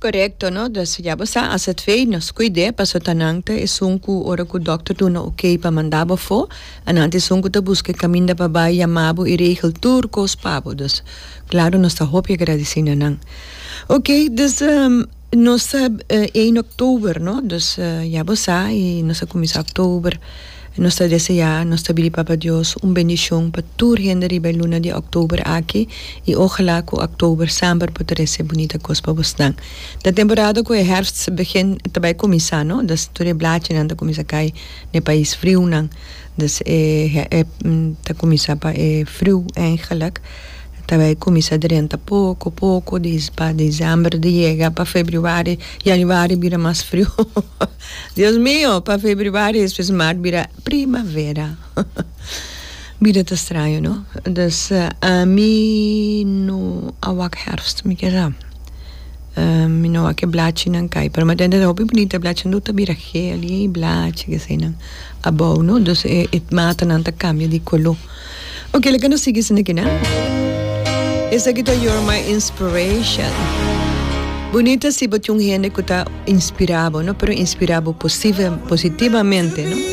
Korekto no dus ya bo sa ase twee nos kuid'e paso ta nan ta esun ku ora ku dòkter duna ok pa manda bo afó a nan ta esun ku ta buska e kaminda pa bai yama bo i regel tur kos pa bo dus klaru nos ta hopi agradisí na nan ok dus nos ta ein oktober no dus ya bo sa i nos a kuminsá oktober. Nos ta deseá nos ta bidi Papa Dios un bendishon pa tur hende riba e luna di òktober aki i ojalá ku òktober samper por trese bunita kos pa bosnan. Ta temporada ku e hèrfst begin ta bai kuminsá no, dus tur e blachinan ta kuminsá kai na e pais friunan, dus e ta kuminsá pa e friu eingelik ta bai kuminsá drenta poko poko di pa disember di yega pa febrüari, yanuari bira mas friu. Dios mio, pa febribari espe smaart bira primavera. Bida ta straño no. Dus ami no a wak herfst, mi ke sa. Mi no a wak e blachinan kai, pero mi a tende hopi bunita e blachinan tur ta bira geel, yey blachi, keseynan abou no. Dus e matanan ta kambia di koló. Ok, leke nos sigui esaki na. Esaki ta You're My Inspiration. Bunita si bo tin un hende ku ta inspirabo, no? Pero inspirabo positivamente, no?